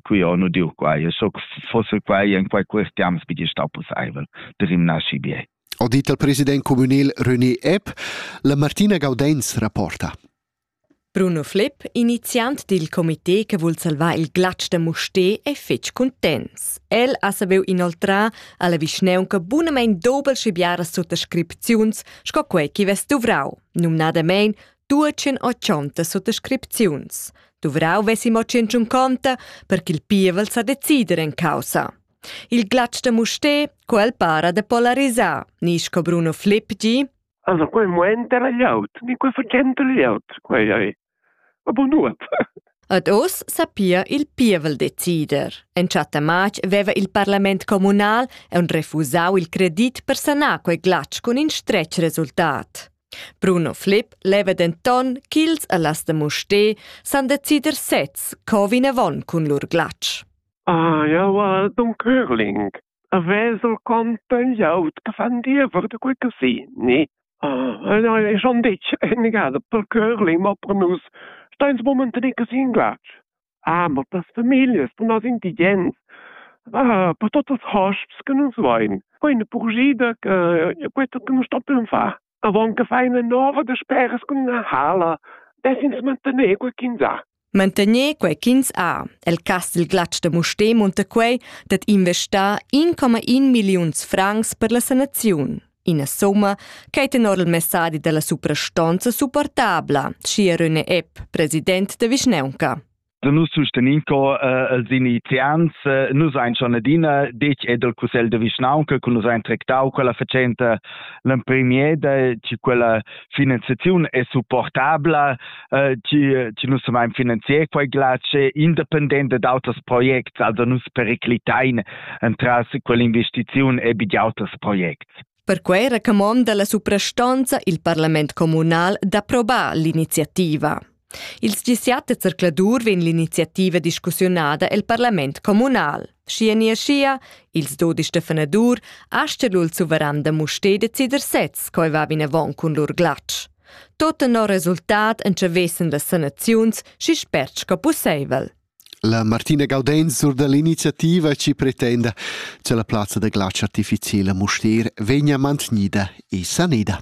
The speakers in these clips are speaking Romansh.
qui ho nu diu quai e so fosse quai in quai questiams bi sta possibel de rimnasci bie ho dit al president communal René Epp la Martina Gaudenz rapporta Bruno Flipp, iniziant dil comité che vul salvar il glatsch de Musté, è fetg contents. El ha saviu inoltrar alla vischneunca bunamein dobel schibiaras suttascripziuns sco quei chi vess duvrau, numnadamein tuotschen ochonta suttascripziuns. Duvrau vessi mo tschunconta per ch'il pievel sa decider en causa. Il glatsch da Musté, quel para de polarisar, ni sco Bruno Flipgi. Also, quei moment era laut, ni quei facente laut, quei ei. Aber nuot. Ad oz sapia il pievel decider. Entschatta matg veva il parlament communal e un refusau il credit per sanar quei glatsch cun in stretg resultat. Bruno Flipp leva denton ch'ils allas da Mustér san decider sez co vinavon cun lur glatsch. Ah, ja, well, dun Curling. A vesel conten jaut che fan diever de quei casini. Ah, ja, e schon ditg, enigada pel Curling, ma per nus, steins momentan in casini glatsch. Amo tas famiglias, bunas indigens, per tuots ils hosps che nus vain. Ho üna purschida che queta che nus stoppem far. Avon che far üna nova dasperas cun üna hala, dess'ins mantener quei ch'ins ha. Mantener quei ch'ins ha. El cas dil glatsch de Mustér munta quei dad investar 1,1 milliuns francs per la sanaziun. Ina somma ch'ei tenor il messadi dalla suprastonza supportabla, schia Rune Epp, president de Vischneunca. Nus sustenin co uh, els iniziants, uh, nus ein schon adina detg ed el Cussegl de Vischnaunca, cu nus ein tractau quella facenta l'empremier de, che quella finanziaziun è supportabla, eh, ci, ci nus am finanzier quei glace independente d'auters projects, also nus periclitain entras quell'investiziun e di auters projects. Perquei racamonda la suprastanza il parlament communal d'approbar l'iniziativa. Il sgissiat de zercladur vegn l'iniziativa discussiunada el parlament communal. Schia ni schia, ils dodisch de Fenadur, aschelul suveran da Musté decider sez, coi va vinavon cun lur glatsch. Tot tenor resultat entschevessan las sanaziuns schi spert sco pusseivel. La Martina Gaudenz sur dall'iniziativa ci pretenda che la plazza da glatsch artificiala Mustier vegna mantenida e sanida.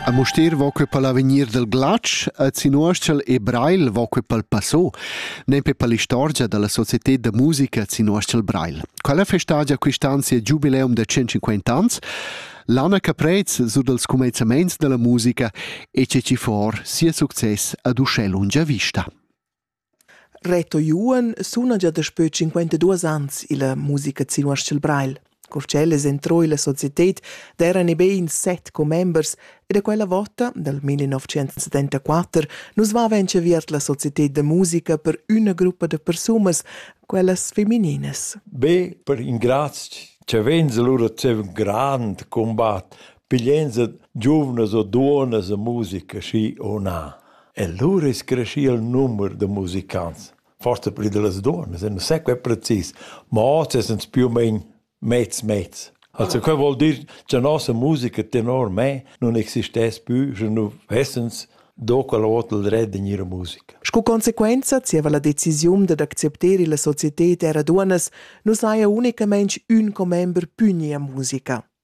A Mustier vo que pal avegnir del glatsch, a Zinuoschel e Breil vo que pal Passo. nempe per l'istorgia dalla società da musica Sinuastl Breil. Quella festagia quist'anzi è giubileum da 150 ans, Lana Caprez su dals comenzaments della musica e ceci for sia success ad uschè lungia vista. Reto Juan suna gia daspö 52 ans illa musica Sinuastl Breil. Cur ch'el es entrò illa societed d'eiran i be in set commembers e da quella vota, dal 1974, nu's vaiva inchaviert la societed da musica per üna gruppa da persunas, quellas femininas. Be per ingrazch cha vainsa lura zieva ün grand cumbat pigliainsa giuvnas o duonnas a musica, schi o na. E lura es creschì il numer da musicants. forse pli da las duos, ma sembra sai quai precis, ma oz es ins più o meno mezz mezz. Also ah. quel vuol dir cha nossa musica tenor me non existess più, sche nu vessens do quella ota il red in ira musica. Sco consequenza zieva la decisiun dad accepter illa societed era duonas, nu saja unicamaing ün commember pugni a musica.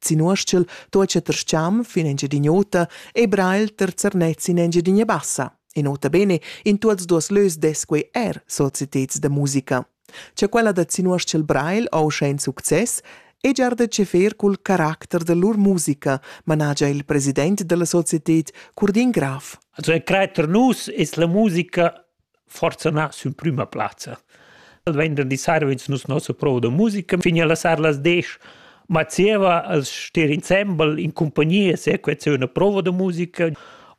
Zinuoschel tuocha terscham fin Engiadin'Ota e brail terzernetz in Engiadinia Bassa. E nota bene, in tuots duos lös des quei er societeds da musica. Cha quella da Zinuoschel Brail oscha in success e giar da cefer cul caracter da lur musica, managia il president della societed Curdin Graf. Also, creater nus es la musica forsa na sün prüma plazza. Il venderdi sarvins nus nossa prova da musica fin alla sar las 10 ma zieva als stir insembel in compagnia se quet se una prova da musica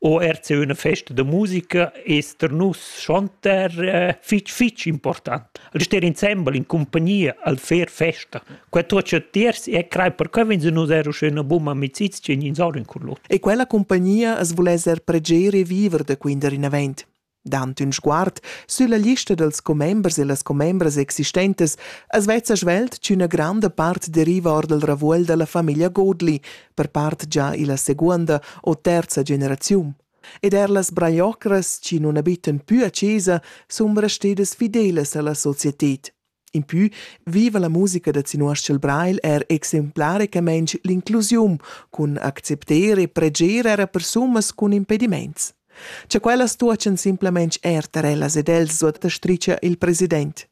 o er se una festa da musica ester nus schonter eh, fich fich important. Al stir insembel in compagnia al fer festa. Quel tot ce tiers e crai per che vens nus ero schöna bumma amicizia in insorin cur lur. E quella compagnia as voless er preger e viver da quinder in avent. Dant ün sguard sülla lista dals commembers e las commembras existentas as vezza svelt ch'üna granda part deriva or dal ravuogl da la famiglia Godli, per part già illa seguonda o terza generaziun. Ed eir las braiocras chi nun abitan pü a chesa sun restedas fidelas a la societed. Impü viva la musica da Zinuoschel Breil er exemplaricamein l'inclusiun cun accepter e preger era persunas cun impediments. Cha quellas tuochan simplemente er tar ellas ed els, suota stricha il president.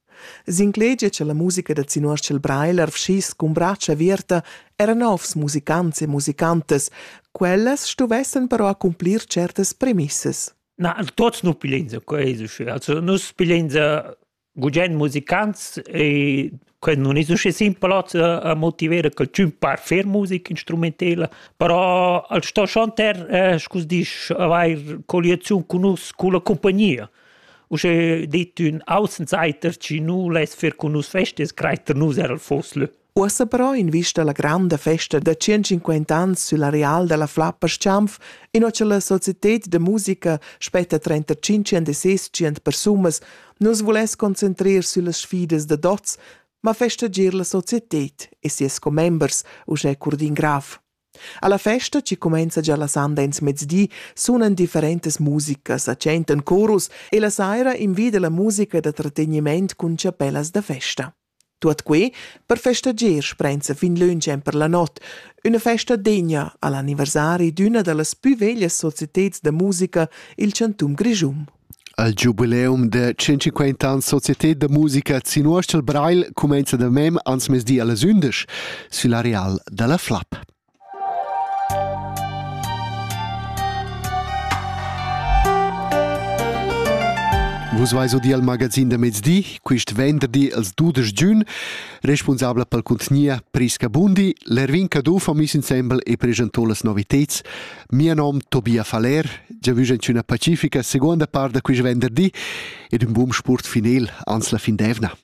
S'inclegia cha la musica da Zinuoschel Breil arvschiss cun bratscha averta era novs musicants e musicantas, quellas stuvessan però accumplir certas premissas. Na, tots nu pilensa, co es usche. Also nus pilensa gugent musicants e que nun es usché simpel hoz a motiver quel tschun par fer musica instrumentela, però al sto chanter scu's disch avair colliaziun cun nus culla cumpagnia. Uschè dit ün Außenseiter chi nu less fer cun nus fest es crajer nus eir al Voslö. Uossa però in vista alla granda festa da 150 ans sül areal dalla Flappa Schanf, inua cha la societed da musica spetta 35 and e sescient persunas, nus vuless concentrer süllas sfidas da dots, ma festager la societed e sias commembers, uschè Curdin Graf. Alla festa, chi cumenza già la sanda ins mezdi, sunan differentas musikas, accentan corus e la saira invida la musica da tratteniment cun chapellas da festa. Tuot quai per festager sprenza fin lönch emper la not, üna festa degna al anniversari d'üna da las pü veglias societeds da musica i'l chantun Grischun. Al giubileum da 150 ans Societé da musica Zinuoschel Breil cumenza da mem ans mezdi allas 11 sül areal da la Flap. Vus veis odi al magazin da mezdi, quist venderdi als dudesch giun, responsabla pel cuntgnia Prisca Bundi, l'Ervin Caduff ho miss insembel e presentò las noviteds. Mia nom Tobia Faller, già vügen üna pacifica seconda part da quist venderdi ed ün bun sport finel ans la fin d'eivna.